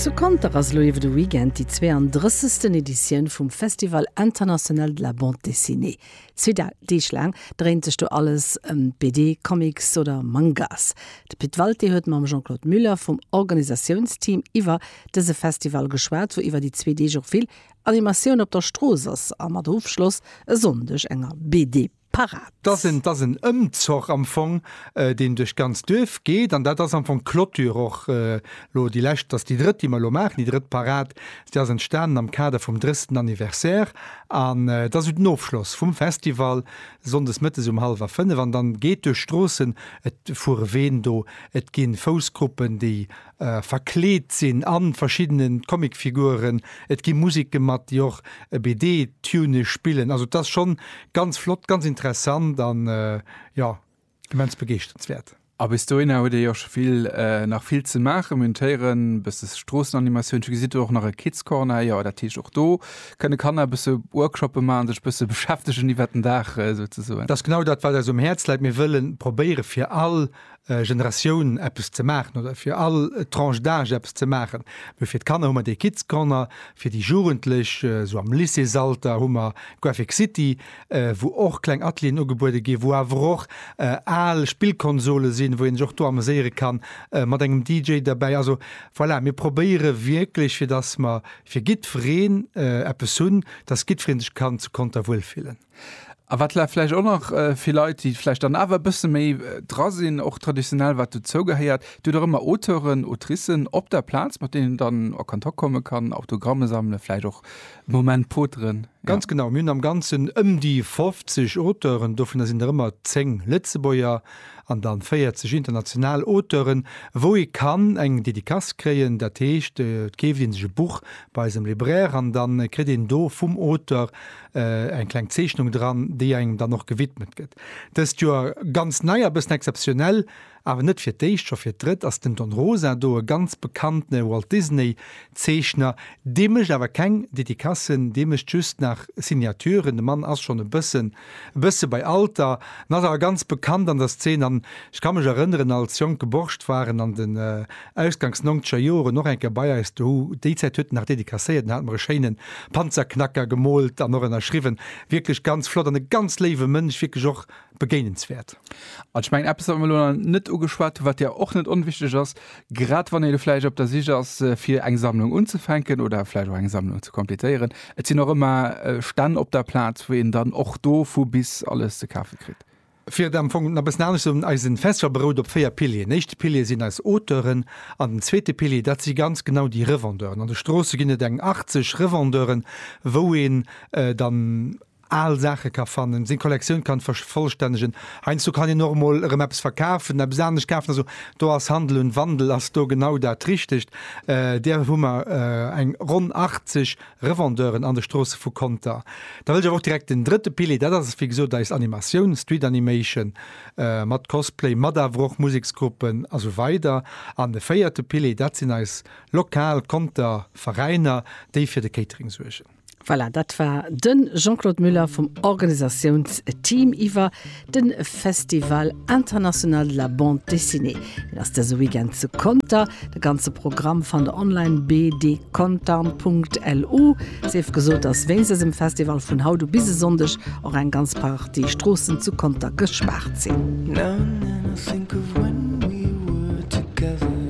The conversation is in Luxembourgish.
Zu Conter ass elo iwwer de Weekend déi 32. Editioun vum Festival International de la Bande Dessinée. Zwee Deeg laang dréint sech do alles ëm BD, Comics oder Mangas. De Pit Walté huet mam Jean-Claude Muller vum Organisatiounsteam iwwer dëse Festival geschwat, wou iwwer déi zwee Deeg och vill Animatioun op der Strooss ass a mat Ofschloss e Sonndeg enger BD. parat. Dass en, dass en Ëmzoch am Fong, deen duerch d'ganz Duerf geet, an dat ass am Fong d'Clôture och elo, déi lescht, dass déi drëtt, déi mer elo maachen, déi drëtt Parad, déi ass entstanen am Kader vum 30. Anniversaire an dat ass esou den Ofschloss vum Festival, sonndes mëttes um hallwer fënnef. An dann geet duerch d'Stroossen, et fuere Ween do, et gi Foussgruppen, déi verkleet sinn an verschiddene Comicfiguren, et gi Musik gemat, déi och e BD Tune spillen, also et ass schonn ganz flott, ganz interessant an jo immens begeeschternswäert. A bis dohinner huet ee jo scho vill nach vill ze maachen, mir hunn d'Héieren, e bësse Stroossenanimatioun, ech gesi do och nach e Kids Corner, jo dat heescht och do kënne Kanner e bësse Workshoppe maachen, sech e bësse beschäftegen iwwert den Dag souzesoen. Dat ass genau dat wat eis um Häerz läit, mir wëlle probéiere fir all Generatioun eppes ze maachen oder fir all Tranche d'âge eppes ze maachen. Mee fir d'Kanner hu mer dee Kids Corner, fir déi Jugendlech esou am Lycéesalter hu mer Graphic City, wou och kleng Atelieren ugebuede ginn, wou awer och al Spillkonsole sinn, wou een sech och do ameséiere kann, mat engem DJ derbäi. Also voilà, mir probéiere wierklech fir datt mer fir giddwereen eppes hunn, datt giddweree sech kann zu Conter wuelfillen. A wat vläicht och nach fir Leit, déi vläicht dann awer e bësse méi dra sinn, och traditionell wat dozou gehéiert, Dir hutt och ëmmer Auteuren, Autricen op der Plaz, mat deenen een dann a Kontakt komme kann, Autogramme sammelen, vläicht och e Moment poteren. Ganz genau, mir hunn am Ganzen ëm déi 50 Auteuren, dovunner sinn der ëmmer 10 Lëtzebuerger an da 40 international Auteuren, wou ee kann eng Dedicace kréien. Dat heescht, et keeft ee sech e Buch bei eisem Libraire an da kritt een do vum Auteur eng kleng Zeechnung dran, déi engem dann och gewidmet gëtt. Dëst Joer ganz nei a bëssen exzeptionell, awer net fir d'éischt, scho fir d'drëtt ass den Don Rosa do, e ganz bekanntene Walt Disney Zeechner. Dee mécht awer keng Dedicassen, dee mécht just nach Signaturen. De Mann ass schonn e bëssen e bësse bei Alter an ass awer ganz bekannt an der Szene an ech ka mech erënneren, als jonke Borscht war en an de Ausgangs nongzeger Joren och eng Kéier bei eis dohu. Déi Zäit huet en nach dédicacéiert, en hat mer e schéinen Panzerknacker gemoolt an och ënnerschriwwen. Wierklech ganz flott an e ganz léiwe Mënsch, wierklech och begéinenswäert. An ech mengen, eppes, wat mer elo nach net ugeschwat hunn, wat jo och net onwichtig ass, grad wann ee lo vläicht op der Sich ass, fir eng Sammlung unzufänken oder vläicht och eng Sammlung ze kompletéieren, Et sinn och ëmmer Stänn op der Plaz, wou een dann och do vu bis alles ze kafe kritt. Fir et am Fong nach e bëssen anescht ze soen, Eisen Festival berout op véier Pilieren. Den éischte Pilier sinn eis Auteuren an den zweete Pilier, dat si ganz genau déi Revendeuren. An de Stroosse ginn et eng 80 Revendeuren, wou een dann al Saache ka fannen, seng Kollektioun kann vervollstännegen. Heiansdo kann een och emol erëm eppes verkafen, eppes anescht kafen. Also do ass Handel und Wandel ass do genau dat Richtegt. Där hu mer eng ronn 80. Revendeuren an de Stroosse vu Conter. Da wëll ech awer och direkt den drëtte Pilier, dat ass wéi gesot eis Animatioun, Street Animation, mat Cosplay, mat awer och Museksgruppen a sou weider. An de véierte Pilier, dat sinn eis lokal Conter Veräiner, déi fir de Catering suergen. Voilà, dat war de Jean-Claude Muller vum Organisatiounsteam iwwer De Festival international de la bande dessinée, deen ass dëse Weekend zu Conter. De ganze Programm fannt der online, bdcontarn.lu. Sief gesot, dass wéinst dësem Festival vun haut u bis e Sonndeg och eng ganz Partie Stroossen zu Conter gespaart sinn.